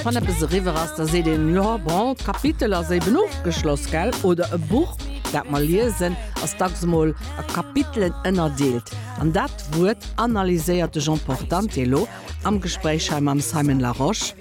Wann eppes eriwwer ass, da seet een, jo bon, d'Kapitel ass eben ofgeschloss, gell? Oder e Buch, dat mer liesen, ass dacks emol a Kapitelen ënnerdeelt. An dat Wuert analyséiert de Jean Portante elo am Gespréich hei mam Simon Larosche.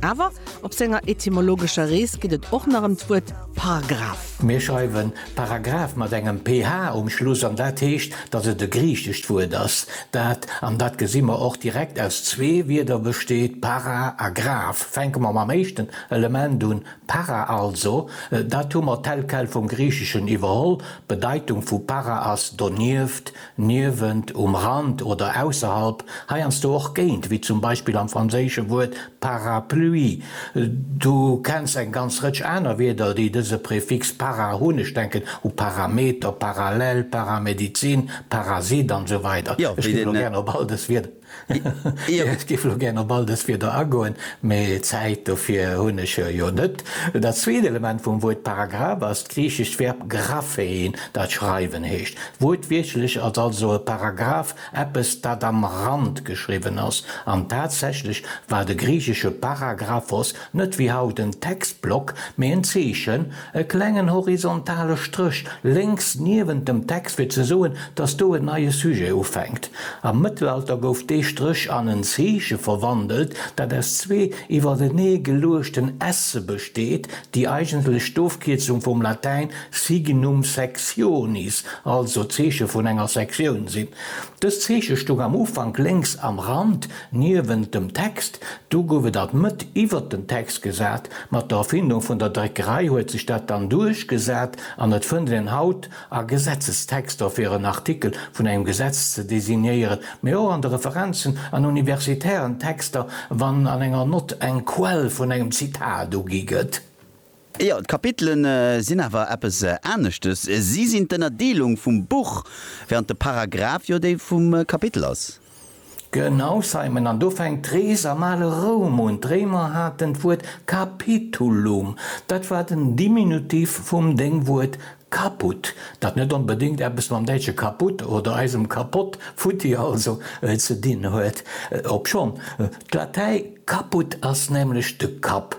Awer op senger etymologescher Rees geet et och nach ëm d'Wuert Paragraph. Mir schreiwen Paragraph mat engem PH um Schluss, an dat heescht, dass et e griichescht Wuert ass, dat, an dat gesi mer och direkt, aus zwee Wierder besteet, para a graph. Fänke mer mam éischten Element un, para also, dat hu mer tel quel vum Griicheschen iwwerholl, d'Bedeitung vu para ass donieft, Niewent, um Rand oder ausserhalb, heiansdo och géint, wéi zum Beispill am franséische Wuert parapluie. Du kenns eng ganz Rëtsch aner Wierder, déi dëse Prefix para hunn, ech denken u Parameter, Parallel, Paramedizin, Parasit an esou weider. Ech ginn elo gären op all dës Wierder. Ech géif elo gären op all dës Wierder agoen, mä Zäit dofir hunn ech jo net. Dat zweet Element vum Wuert Paragraph ass d'griichescht Verb graphein, dat schreiwen heescht. Wuertwiertlech ass also e Paragraph eppes, dat am Rand geschriwwen ass. An tatsächlech war de griichesche para graph os net wéi haut en Textblock, mä en Zeechen, E klengen horizontale Stréch lénks niewent dem Text fir ze soen, dass do en neie Sujet ufänkt. Am Mëttelalter gouf dee Stréch an en Zeeche verwandelt, dat aus zwee iwwertenee geluechten S'e besteet, déi eigentlech d'Ofkierzung vum Latäin signum sectionis, also Zeeche vun enger Sektioun, sinn. Dëst Zeeche stoung am Ufank lénks am Rand, Niewent dem Text, do gouf et alt Mëtt iwwert den Text gesat, mat der Erfindung vun der Dréckerei huet sech dat dann duerchgesat an et fënnt een haut a Gesetzestexter fir en Artikel vun engem Gesetz ze designéieren, mee och an de Referenzen an universitären Texter, wann an enger Nott eng Quell vun engem Zitat ugi gëtt. Jo, d'Kapitele sinn awer eppes aneschtes, si sinn d'Ënnerdeelung vum Buch, während de Paragraph jo déi vum Kapitel ass. Genau, Simon, an do fänkt d'Rees am ale Roum un. D'Réimer haten d'Wuert capitulum, dat war den Diminutiv vum Déngwuert caput, dat net onbedéngt eppes mam däitsche kaputt oder eisem kapott, futti also, ze dinn huet, obschonn d'Latäi caput ass, nämlech de Kapp,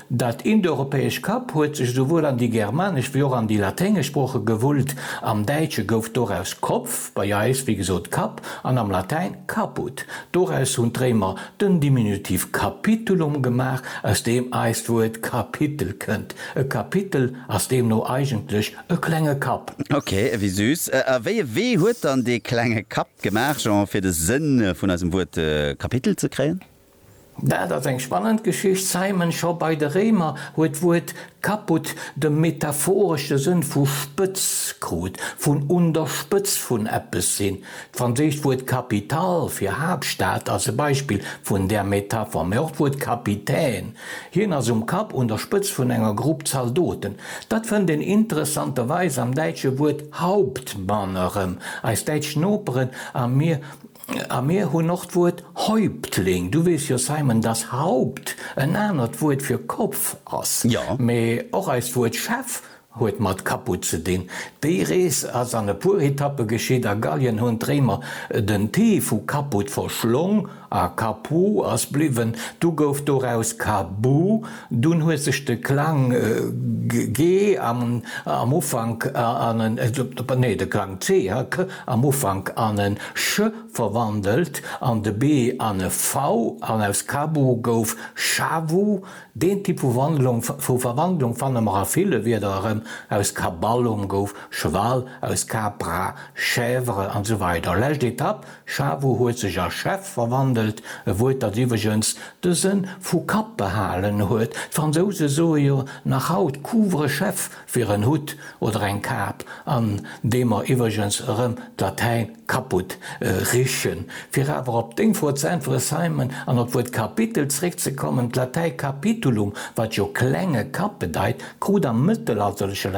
Dat indoeuropäesch Kap huet sech esouwuel an déi germanesch wéi och an déi laténgesch Sprooche gewullt. Am Däitsche gouf doraus Kopf, bei eis wéi gesot Kapp, an am Latäin caput. Doraus hunn d'Réimer den Diminutiv capitulum gemaach, aus deem eist Wuert Kapitel kënnt. E Kapitel ass deemno eigentlech e klenge Kapp. Ok, ewéi süß. A wéi e Wee huet dann dee klenge Kapp gemaach, Jean, fir de Sënn vun eisem Wuert Kapitel ze kréien? Dat ass eng spannend Geschicht. Simon, Scho bei de Réimer huet d'Wuert caput de metaphoresche Sënn vu spëtz krut, vun un der Spëtz vun eppes sinn. D'franséischt Wuert capitale fir Haaptstad ass e Beispill vun där Metapher, mä och d'Wuert capitaine, hien ass um Kapp, un der Spëtz vun enger Grupp Zaldoten, dat fënnt een interessanterweis am däitsche Wuert Hauptmann erëm. Eis däitsch Noperen a mir A mir hunn och d'Wuert Häuptling. Du weess jo, Simon, dass Haupt en anert Wuert fir Kopf ass. Mee och eist Wuert Chef huet mat Caput ze dinn. Déi Rees ass an e puer Etappe geschitt. A Gallien hunn d'Réimer den t vu Caput verschlong a Capu ass bliwwen. Du gouf doraus Cabu. Dunn huet sech de Klang ge am Ufank an en, nee, de Klang c, am Ufank an e ch verwandelt an de b an e v an aus Kabu gouf Shavu. Deen Typ vu Verwandlung fanne mer a ville Wierder erëm, aus Kaballum gouf Cheval, aus Capra Chèvre an esou weider Lescht Etapp, Shavu huet sech a Chef verwandelt, e Wuert dat iwwregens de Sënn vu Kapp behalen huet. D'Fransouse soe jo nach haut couvre-chef, fir en Hutt oder eng Kap, an deem mer iwwregens erëm d'Latäin kaputt richen. Fir awer op deng Fro ze äntweren, Simon, an op d'Wuert Kapitel zréckzekommen, D'Latäi capitulum, wat jo klenge Kapp bedeit, krut am mëttelalterleche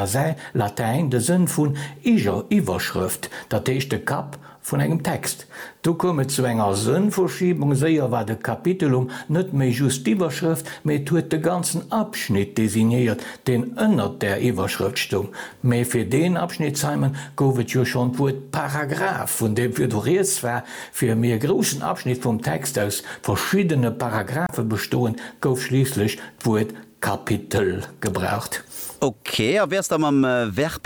Latäin de Sënn vun Iwwerschrëft, dat heescht de Kapp Vun engem Text. Do koum et zu enger Sënnverschiebung, séier war de Kapitelum net méi just d'Iwwerschrëft, mee et huet de ganzen Abschnitt designéiert, deen ënnert där Iwwerschrëft stoung. Mee fir deen Abschnitt, Simon, gouf et jo schonn d'Wuert Paragraph, vun deem virdu Rieds war, fir mee e groussen Abschnitt vum Text aus verschiddene Paragraphe bestoend, gouf schliisslech d'Wuert Kapitel gebraucht. Ok, a wär s da mam Verb